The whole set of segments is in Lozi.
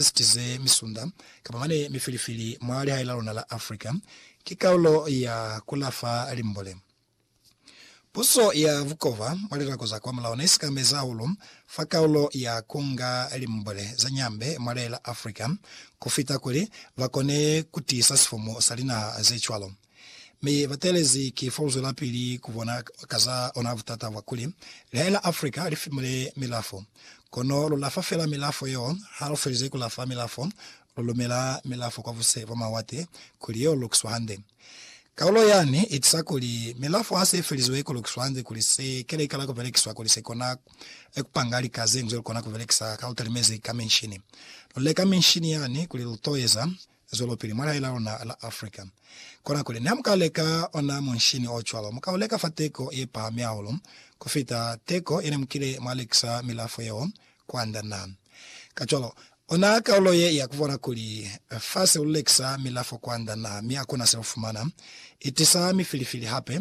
Ziti ze misunda, kapa mane mifilifili mwa lihae la luna la Africa, ki kaulo ya ku lafa limbole. Puso ya bukova mwa lilako za kwa mulao ne sikamezi hahulu fa kaulo ya ku nga limbole za nyambe mwa lihae la Africa, ku fita kuli ba kone ku tiisa sifumu sa linaha ze cwalo. Mi ba teelezi ki fo uzwelapili ku bona ka za ona butata bwa kuli lehae la Africa li fimule milafo. Kono lu lafa fela milafo yeo, ha lu felize ku lafa milafo, lu lumela milafo kwa buse bwa mawate kuli yo lukiswa hande. Kaulo yani i tisa kuli milafo ha se i felizwe ku lukiswa hande kuli se ke likala ku belekiswa kuli se kona ku panga lika ze nzwe lu kona ku belekisa ka lu talimezi ka minshini. Lu leka minshini yani kuli lu to eza Zwelopili mwa lihae la luna la Africa. Kona kuli, niha muka leka ona munshini o cwalo, muka u leka fa teko ye pahami hahulu ku fita teko ye ne mukile mwa lekisa milafo yeo kwand'a na. Kacwalo, ona kaulo ye ya ku bona kuli fa se lu lekisa milafo kwand'a na mi hakuna se lu fumana, i tisa mifilifili hape,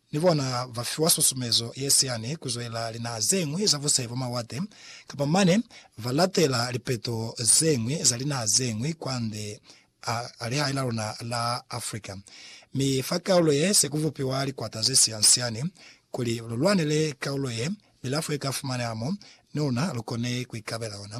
Ni bona ba fiwa susumezo ye siani ku zwelela linaha ze ñwi za busai bwa mawate, kapa mane ba latela lipeto ze ñwi za linaha ze ñwi kwande a lihai la luna la Africa. Mi fa kaulo ye se ku bupiwa likwata ze sian-siani kuli lu lwanele kaulo ye, milafo ye ka fumaneha mo, ni luna lu kone ku ikabela ona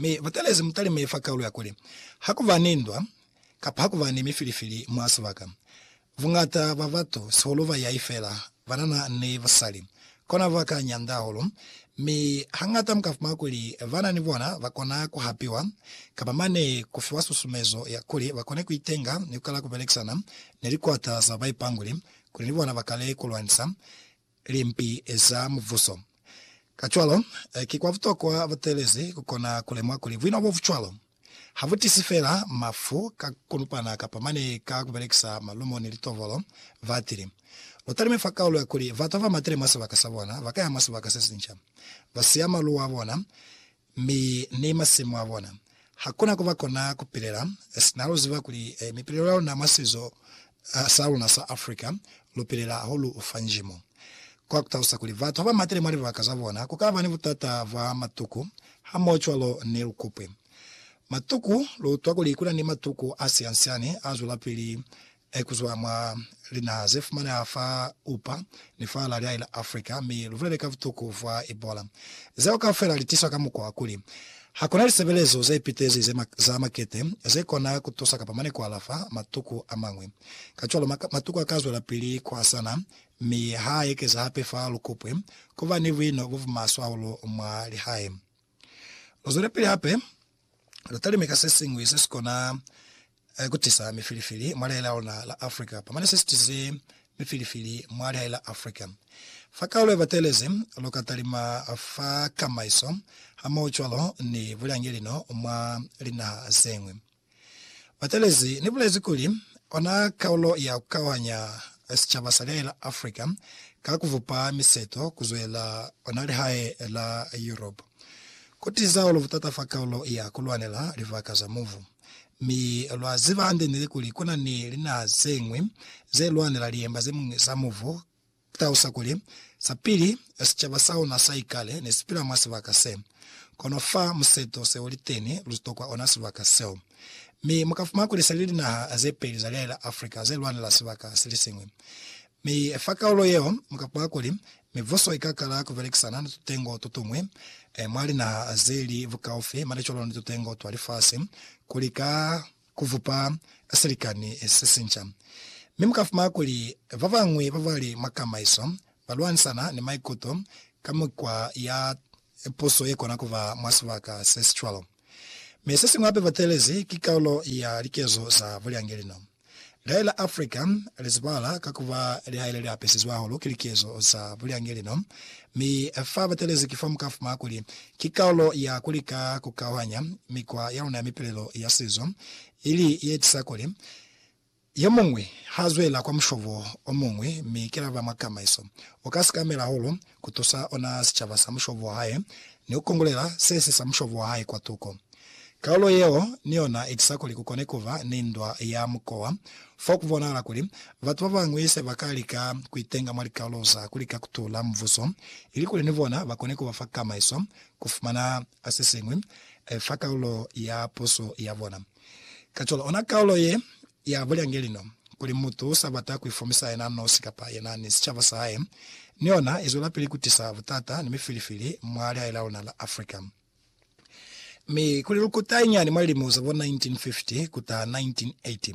Mi butelezi mutalime fa kaulo ya kuli, Hakuba ni ndwa, kapa hakuba ni mifilifili mwa sibaka, buñata bwa batu, sihulu bayai feela, banana ni basali, kona ba ka nyanda hahulu. Mi hañata mu ka fumana kuli bana ni bona ba kona ku hapiwa, kapa mane ku fiwa susumezo ya kuli ba kone ku itenga ni ku kala ku belekisana ni likwata za baipanguli kuli ni bona ba kale ku lwanisa. limpi za Mubuso. Kacwalo, ki kwa butokwa butelezi ku kona ku lemuha kuli buino bo bu cwalo ha bu tisi fela mafu ka ku lupana kapa mane ka ku belekisa malumo ni litovolo. Batili lu talime fa kaulo ya kuli batu ba ba matile mwa sibaka sa bona ba ka ya mwa sibaka se sinca, ba siya maluwa a bona Mi ni masimu a bona. Hakuna kuba kona kupilela sina luziba kuli mipilelo ya luna mwa sizo sa luna sa Africa, lupilela hahulu fa njimo. Kwa kutalusa kuli batu haba matile mwa libaka za bona, kukaba ni butata bwa matuku, hamoho cwalo ni lukupwi. Matuku, Lu utwa kuli kuna ni matuku a siansiani a zwelapili Hai kuzwa mwa linaha ze fumaneha fa upa ni fa la liali la Africa, mi lubulele ka butuku fa Ebola. Zeo kaufela li tiswa ka mukwa wa kuli, ha kuna lisebelezo ze pitezi za makete ze kona ku tusa kapa mane ku alafa matuku a mañwi. Kacwalo, matuku a ka zwelapili ku hasana, mi ha a ekeza hape fa lukupwe, ku ba ni buino bo bumaswe hahulu mwa lihae. Lu zwelepili hape lu talime ka se siñwi se si kona ku tisa mifilifili mwa lihae la luna la Africa, pamane se si tisize mifilifili mwa lihae la Africa. Fa kaulo ye batelezi, lu ka talima fa kamaiso hamohocwalo ni bulyangelino mwa linaha zeñwi. Batelezi ni bulezi kuli, Ona kaulo ya ku kauhanya sicaba sa lihae la Africa ka ku vupa miseto ku zwela ona lihae la Europe. Ku tiza hahulu butata fa kaulo ya ku lwanela libaka za mubu. Mi lwa ziba hande nili kuli ku na ni linaha ze ñwi ze lwanela liemba ze ñwi za mubu. Ku talusa kuli, sa pili, sicaba sa luna sa ikale ne si pila mwa sibaka se. Kono fa museto se u li teni, lu tokwa ona sibaka seo. Mi mu ka fumana kuli se li linaha ze peli za lia la Afrika ze lwanela sibaka se li siñwi. Mi fa kaulo yeo mu ka pwa kuli mibuso i ka kala ku belekisana ni tutengo to tuñwi mwa linaha ze li bukaufi mane cwalo ni tutengo twa lifasi ku lika ku bupa silikani se sinca. Mi mu ka fumana kuli ba bañwi ba ba li mwa kamaiso ba lwanisana ni maikuto ka mukwa ya puso ye kona ku ba mwa sibaka se si cwalo. Mi sesiñwi hape batelezi ki kalulo ya likezo za bulyangelino. Lihae la Africa lizibala ka kuba lihae leliapesizwe hahulu ki likezo za bulyangelino, mi fa batelezi kifo mukafuma kuli ki kalulo ya kulika kukauhanya mikwa yaluna ya mipilelo ya sizo ili yeetisa kuli Yomuñwi ha zwela kwa mushobo omuñwi mi ki laba mwa kamaiso, uka sikamela hahulu kutusa ona sicaba sa mushobo wahae ni kukongolela sesi sa mushobo wahae kwa tuko. Kaulo yeo ni yona itisa kuli kukone kuba ni ndwa ya mukowa fo kubonahala kuli batu babañwi sebaka lika kuitenga mwa likaulo za kulika kutula mubuso ilikuli ni bona bakone kuba fa kamaiso kufumana sesiñwi fa kaulo ya puso yabona. Kacwalo, ona kaulo ye ya bulyange lino, kuli mutu usa bata kuifumisa yena nosi kapa yena ni sicaba sa hae, ni yona izwelapili kutisa butata ni mifilifili mwa lihae la luna la Africa. Mi kuli lukuta inyani mwa lilimo za bo 1950 kuta 1980,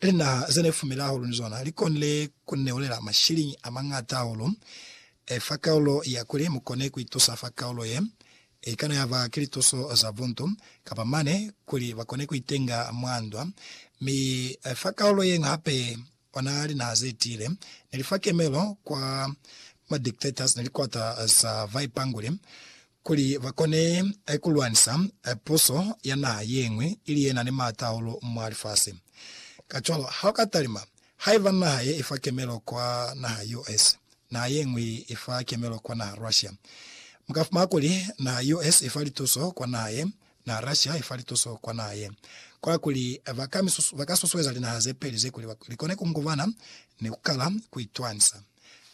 Linaha ze ne fumile hahulu ni zona li konile ku ni neulela mashiliñi a mañata hahulu fa kaulo ya kuli mu kone ku itusa fa kaulo ye. I kana ya ba ki lituso za buntu, kapa mane kuli ba kone ku itenga mwa ndwa. Mi fa kaulo ye ñwi hape, ona linaha ze tiile ne li fa kemelo kwa ma dictators ni likwata za baipanguli. Kuli ba kone ku lwanisa puso ya naha ye ñwi ili ye na ni maata hahulu mwa lifasi. Kacwalo, ha u ka talima, haiba naha ye i fa kemelo kwa naha US, naha ye ñwi i fa kemelo kwa naha Russia, mu ka fumana kuli naha US i fa lituso kwa naha ye, Na rashi hai fa lituso kwa naha ye, kwa kuli ba ka misusu, ba ka susueza linaha ze peli ze kuli li kone ku ngubana ni ku kala ku itwanisa.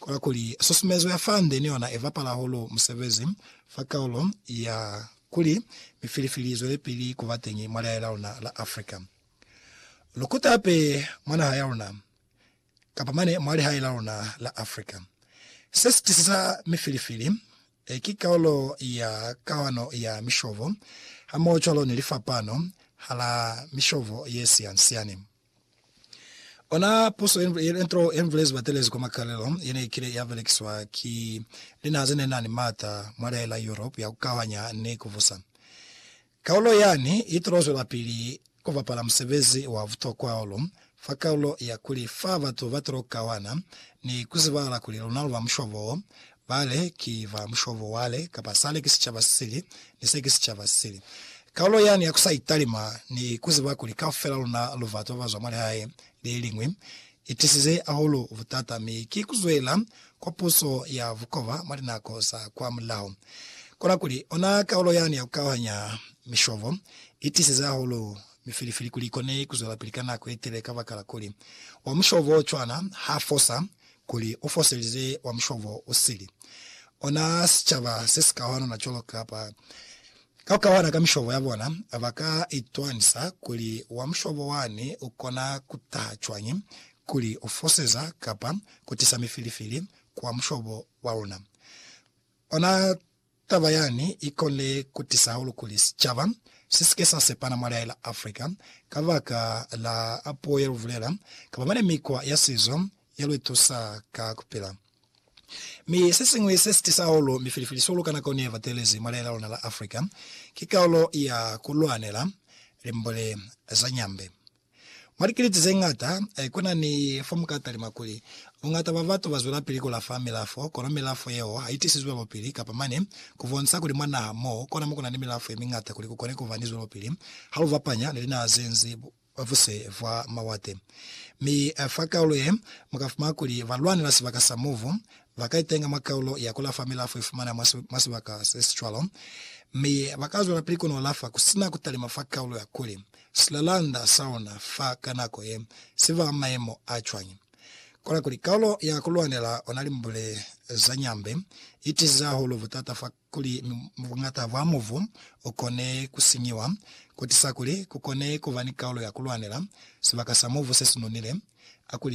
Kwa kuli susumezo ya fa nde ni yona i bapala hahulu musebezi fa kaulo ya kuli mifilifili i zwelepili ku ba teñi mwa lihae la luna la Africa. Lu kuta hape mwa naha ya luna kapa mane mwa lihae la luna la Africa. Se si tisisa mifilifili, ki kaolo ya kawano ya mishovo hamohocwalo ni lifapano hala mishovo ye siansiani. Ona puso ye nto ye nvulezi batelezi kwa makalelo ye ne ikile ya belekiswa ki linaha ze ne na ni maata mwa lihae la Europe ya ku kauhanya ni ku vusa Kaulo yani i tulo zwelapili ku bapala musebezi wa butokwa hahulu fa kaulo ya kuli fa batu ba tulo kawana ni ku zibahala kuli luna lu ba mushobo wo, bale ki ba mushobo wale, kapa sale ki sicaba se sili, ni se ki sicaba se sili. Kaulo yani ya ku sa italima ni ku ziba kuli kaufela luna lu batu ba ba zwa mwa lihae le liñwi, I tisize ahulu butata mi ki ku zwela kwa puso ya bukoba mwa linako za kwa mulaho. Kona kuli, ona kaulo yani ya ku kauhanya mishobo i tisize ahulu mifilifili kuli i kone ku zwelapili ka nako ye tele kabakala kuli, wa mushobo o cwana ha fosa kuli u foselize wa mushobo u sili. Ona sicaba se si kauhanana cwalo kapa. Ka ku kawala ka mishobo ya bona, ba ka itwanisa kuli wa mushobo wani u kona ku taha cwañi kuli u foseza kapa ku tisa mifilifili ku wa mushobo wa luna. Ona taba yani i konile ku tisa hahulu kuli sicaba si si ke sa sepana mwa lihai la Afrika ka baka la puo ye lu bulela kapa mane mikwa ya sizo ye lu itusa ka ku pila. Mi sesiñwi sesitisa hahulu mifilifili sihulu ka nako neba teelezi mwa lehe la luna la Africa ki kaulo ya kulwanela limbole za nyambe. Mwa likiliti zeñata kuna ni fo muka talima kuli, buñata bwa batu bazwelapili kulafa milafo, kono milafo yeo haitisizwi bwelopili kapa mane kubonisa kuli mwa naha mo kona mo kuna ni milafo yemiñata kuli kukone kuba ni zwelopili halu bapanya ni linaha zenzi kwa buse bwa mawate. Mi fa kaulo ye, mu ka fumana kuli balwani ba sibaka sa mubu ba ka itenga mwa kaulo ya ku lafa milafo i fumaneha mwa sibaka se si cwalo, mi ba ka zwelapili kono lafa ku si na ku talima fa kaulo ya kuli, Silalanda sa ona fa ka nako ye si ba mayemo a cwañi? Kola kuli, kaulo ya ku lwanela ona limbule za nyambe i tiize hahulu butata fa kuli buñata bwa mubu u kone ku sinyiwa, ku tisa kuli ku kone ku ba ni kaulo ya ku lwanela sibaka sa mubu se si nonile, a kuli,